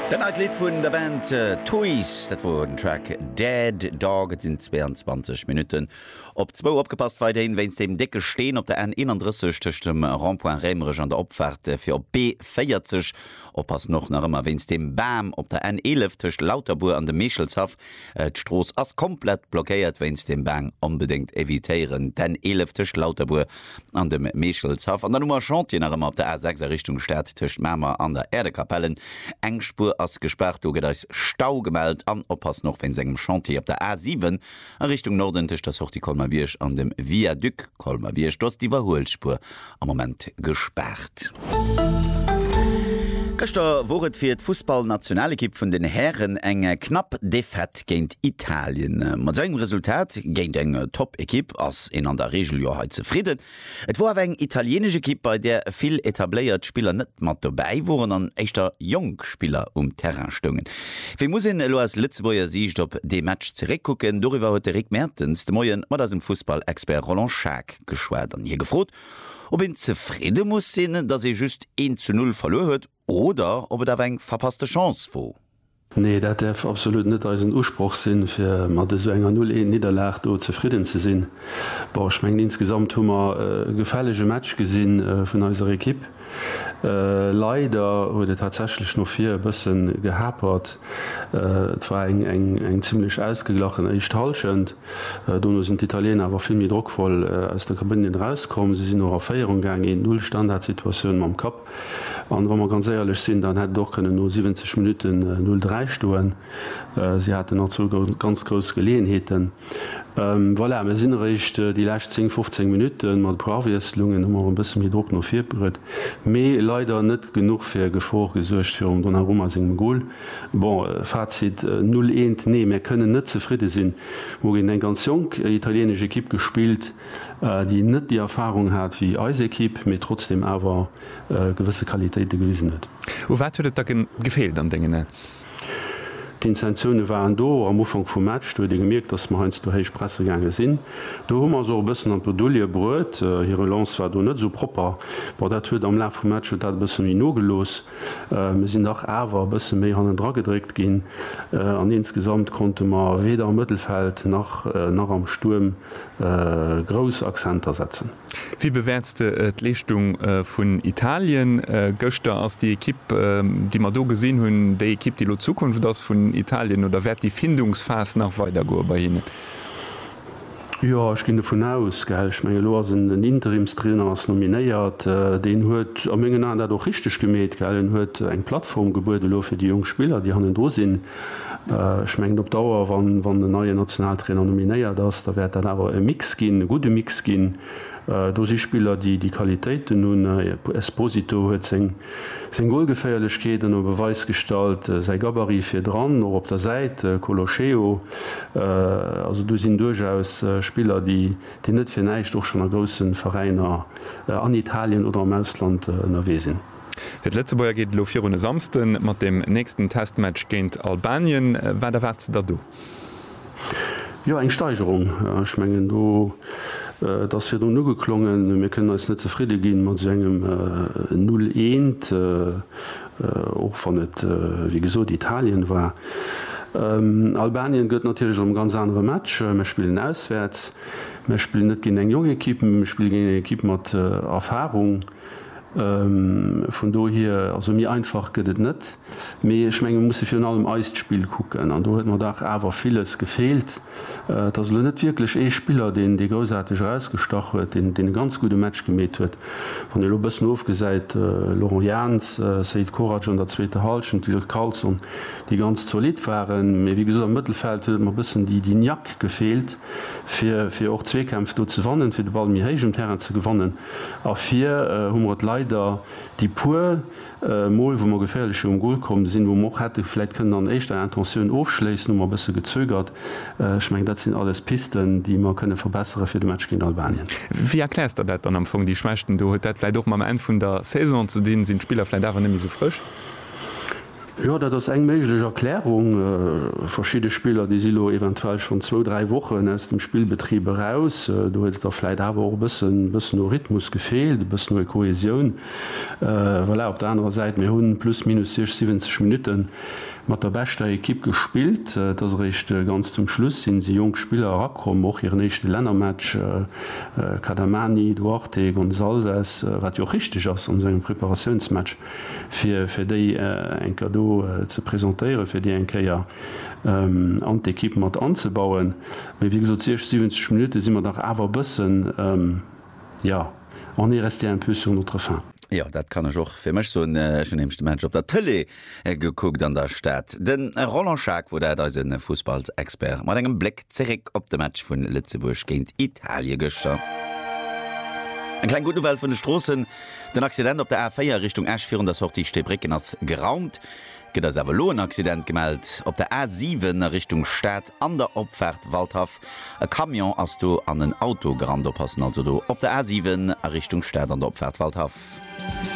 Dat neit Lidd vun der Band Toys, dat wor den Track Dead Dog. Et sinn 22 Minutten op zwou. Opgepasst, Weideén wéinst deem décke Steen op der N 31 tëscht dem Rond-point Réimerech an der Opfaart fir op d'B40. Oppassen och nach ëmmer wéinst deem Bam op der N 11 tëscht Lauterbuer an dem Meechelshaff. D'Strooss ass komplett blockéiert wéinst dem Bang, onbedéngt evitéieren, d'N11 tëscht Lauterbuer an dem Meechelshaff an dann hu mer Chantier nach ëmmer op der A6 a Richtung Stad tëscht Mamer an der Äerdekapellen. Eng Spuer ass gespaart, do gëtt eis Stau gemellt an oppassen och wéinst engem Chantier op der A7 a Richtung Norden tëscht der Sortie Colmer-Bierg an dem Viaduc Colmer-Bierg, do ass d'Iwwerhuelspuer am Moment gespaart. Gëschter wor et fir d'Fussballnationalekipp vun den Hären eng knapp Defaite géint Italien. Mat esou engem Resultat géint eng Top-Ekipp ass een an der Reegel jo hei zefridden. Et wor awer eng italienesch Ekipp, bei där vill etabléiert Spiller net mat dobäi woren an éischter jonk Spiller um Terrain stoungen. Wéi muss een elo aus Lëtzebuerger Siicht op dee Match zeréckkucken? Doriwwer huet de Rick Mertens de Moie mat eisem Fussballexpert Roland Schaack geschwat an hie gefrot, ob een zefridde muss sinn, datt ee just eent zu null verluer huet oder ob et awer eng verpasste Chance wor. Nee, dat däerf absolut net eisen Usproch sinn, fir mat esou enger Null-Eent-Nidderlag do zefridden ze sinn. Bon, ech mengen, insgesamt hu mer e gefällege Match gesinn vun eiser Ekipp. Leider huet et tatsächlech no vir e bësse gehapert. Et war eng zimlech ausgeglachen éischt Hallschent. Dono sinn d'Italieener awer vill méi drockvoll aus der Kabënn erauskomm. Si sinn och a Féierung gaangen, 1 : 0, Standardsituatioun mam Kapp. An wa mer ganz éierlech sinn, dann hätt et och kënnen no 70 Minutten 0, 3 stoen. Si haten och zwou ganz grouss Geleeënheeten. Voilà, mir sinn eréischt déi lescht 10, 15 Minutten mat e puer Awiesslungen hu mer och e bësse méi Drock no vir bruet, mee leider net genuch fir Gefor gesuergt virum Donnarumma sengem Gol. Bon, Fazit, Null eent, nee, mir kënnen net zefridde sinn. Mir hu géint eng ganz jonk italieenesch Ekipp gespillt, déi net déi Erfarung hat wéi eis Ekipp, mee trotzdeem awer gewësse Qualitéite gewisen huet. U wat huet et da gefeelt an dengen Aen? D'Intensioune waren do. Am Ufank vum Match, do huet ee gemierkt, datt mer heiansdo héich presse gaange sinn. Do hu mer se och e bëssen an d'Bredouille bruet. Hir Relance war do net esou propper. Bon, dat huet am Laf vum Match huet dat e bësse méi nogelooss. Mir sinn dach awer e bësse méi hannendra gedréckt ginn an insgesamt konnte mer weder am Mëttelfeld nach am Stuerm grouss Accenter setzen. Wéi bewäerts de d'Leeschtung vun Italien gëschter? Ass déi Ekipp, déi mer do gesinn hunn, déi Ekipp, déi elo d'Zukunft ass vun Italien oder wäert déi Findungsphas nach weidergoe bei hinnen? Jo, ech ginn dovun aus. Ech mengen, elo ass en Interimstrainer ass nominéiert. Deen huet a mengen Aen dat och richteg gemeet. En huet eng Plattform gebuede elo fir déi jonk Spiller, déi hannendru sinn. Ech mengen op Dauer, wann en neien Nationaltrainer nominéiert ass, da wäert dat awer e Mix ginn, e gudde Mix ginn. Do si Spiller, déi déi Qualitéiten hunn. Esposito huet seng Golgeféierlechkeet ënner Beweis gestallt, säi Gabarit virdran, och op der Säit, Colocheo. Also do sinn duerchaus Spiller, déi net fir näischt och schonn a grousse Veräiner an Italien oder am Ausland ënnerwee sinn. Fir d'Lëtzebuerger geet et elo virun e Samsden mat dem nächsten Testmatch géint Albanien. Wat erwaart s de der do? Jo, eng Steigerung. Ech mengen, do, et ass virdrun ugeklongen, mir kënnen eis net zefridde gi mat esou engem Null eent, och wann et, wéi gesot, Italien war. Albanien gëtt natierlech och e ganz anere Match. Mir spillen auswäerts, mir spillen net géint eng jonk Ekipp, mee mir spille géint eng Ekipp mat Erfarung. Vun dohier, also méi einfach gëtt et net. Mee ech menge mir musse virun allem eist Spill kucken. An do huet mer dach awer villes gefeelt. Et ass elo net wierklech ee Spiller, deen dee groussaarteg erausgestach huet, deen deen e ganz gudde Match gemeet huet. Wann een elo e bëssen ofgesäit, Laurent Jans, Seid Korac an der zweeter Hallschent, Dirk Carlson, déi ganz zolidd waren. Mee wéi gesot, am Mëttelfeld huet et mer e bëssen déi déi Niack gefeelt, fir fir och Zweekämpf do ze wannen, fir de Ball méi héich um Terrain ze gewannen. A fir hu mer et leider déi puer Mol, wou mer geféierlecher um Gol komm sinn, wou mer och hätte vläicht kënnen an éischter Intentioun ofschléissen, hu mer e bësse gezögert. Ech mengen, dat sinn alles Pisten, déi mer kënne verbessere fir de Match géint Albanien. Wéi erkläers Der dat dann am Fong, déi Schwächten do? Huet dat vläicht och mam Enn vun der Saison ze dinn? Sinn d'Spiller vläicht awer net méi esou frësch? Jo, dat ass eng méiglech Erklärung. Verschidde Spiller, déi si lo eventuell schonn zwou, dräi Wochen aus dem Spillbetrib eraus. Do huet et da vläit awer och e bëssen, e bëssen u Rhythmus gefeelt, e bëssen u Kohäsioun. Voilà, op der anerer Säit, mir hu plus minus 60, 70 Minutte mat der beschter Ekipp gespillt. Et ass eréischt ganz zum Schluss si si jonk Spiller erakomm, och hiren éischte Lännermatch, Cadamani, Duarte, Gonçalves, wat jo och richteg ass an esou engem Preparatiounsmatch. fir fir déi eng Kéier do ze presentéieren, fir déi eng Kéier an d'Ekipp mat anzebauen. Mee wéi gesot, 60, 70 Minutte si mer dach awer e bëssen, jo, on est resté un peu sur notre faim. Jo, dat kann ech och fir mech soen. Ech hunn nämlech de Match op der Tëlee gekuckt an der Stad. De Roland Schaack war dat, eise Fussballsexpert mat engem Bléck zeréck op de Match vu Lëtzebuerg géint Italie gëschter. Eng kleng Gutt Nouvelle vun de Stroossen. Den Accident op der A4 Richtung Esch virun der Sortie Steebrécken ass geraumt. Gëtt eis awer elo en Accident gemellt op der A7 a Richtung Stad an der Opfaart Waldhaff. E Camion ass do an en Auto gerannt. Oppassen also do op der A7 a Richtung Stad an der Opfaart Waldhaff.